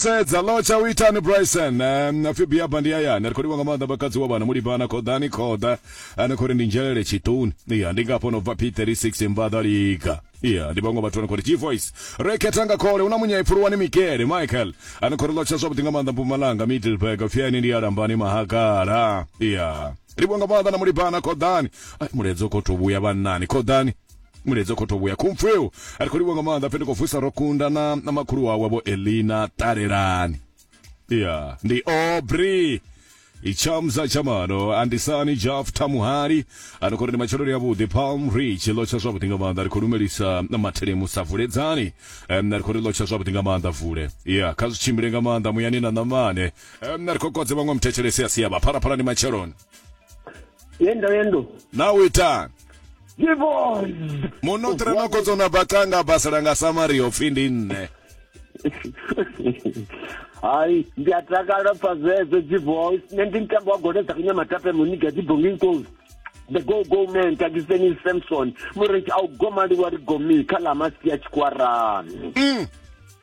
Sedza lotsha u itani Bryson um, pfi Biaba ndi hayani ri khou livha nga maanḓa bakadzi wa vhana mulibana khoḓani khoḓa ane khou ri ndi nzhelele tshituni iya ndi ngafho no bva P36 mbaḓa liga iya ndi vhaṅwe vhathu ane khou ri G voice re khetha nga khole hu na munyai pfuluwani Mikele Michael ane khou ri lotsha zwavhuḓi nga maanḓa Mpumalanga Middleburg pfi ene ndi ya lambani mahagala iya livho nga maanḓa na mulibana khoḓani ai mulaedza u khou tou vhuya vhannani khoḓani muledzi khotho vhuya khumfweu a ri khou livho nga maanḓa pfhe ndi khou vusa ro kunda na na makhulu wawe vho elina ṱalelani ya ndi obri itshamza tshamano andisani jaf thamuhali ano khori ndi matsheloni avhuḓi palm rich ḽo tsha zwavhuḓi nga maanḓa ri khou lumelisa mathelemu sa vuledzani um, ri khou ri ḽo tsha zwavhuḓi nga maanḓa vule ya kha zwi tshimbile nga maanḓa muyani na ṋamane um, ri khou kodze vhaṅwe muthetshelesi a sia vha phalaphala ndi matsheloni yendo yendo na u itani Yebo. munoṱre no kotsona bacanga basela nga samari yo pfhi ndi nṋe hayi ndi a takala pfa zwezwo dziboys nṋe ndi mutambo wa gole dza kunyamatape muniga dzibongi nkosi the go go man takiseni samson mureti a u gomaliwa ri gomi kha ḽa masi ya tshikwarani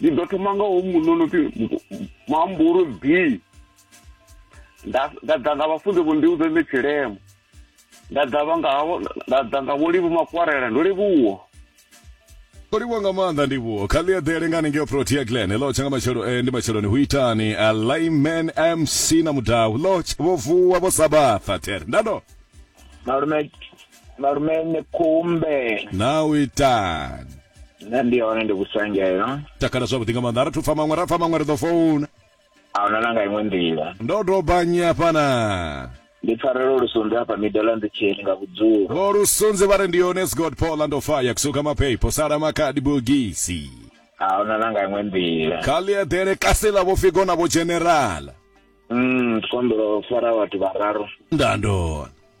ndi ḓo thoma nga ho muṋe no pfi muhambulu b nda ḓa nga vhafunzi vho ndi udze nṋe tshilemo nda ḓa vha nga nda ḓa nga vho livhu makwarela ndo livhuwa o livhuwa nga maanḓa ndivhuwo kha ḽi eḓele nga haningeo protea glen hello tsha nga matshelo eh, ndi matsheloni hu itani uh, eh, layman mc na mudau lotch vho vuwa vho sabatha there ndado malume Malume ni kumbe. Na u itani? Nṋe ndi hone ndi vhusangela. Takala zwavhuḓi nga maanḓa. Ara thu pfa maṅwe, ra pfa maṅwe ri ḓo founa. A huna na nga iṅwe nḓila. Ndo dobanyi hafha na. Ndi pfarelo lusunzi hafha miḓo ḽa nḓitsheni nga vhudzulo. Vho lusunzi vha ri ndi hone Scott Paul and Fire kusuka maphepho sala makhadi bogisi. A huna na nga iṅwe nḓila. Kha ḽi eḓele kasi ḽa vho Figo na vho General. Mm, ndi khou humbela u fara vhathu vhararu. Nda ndona.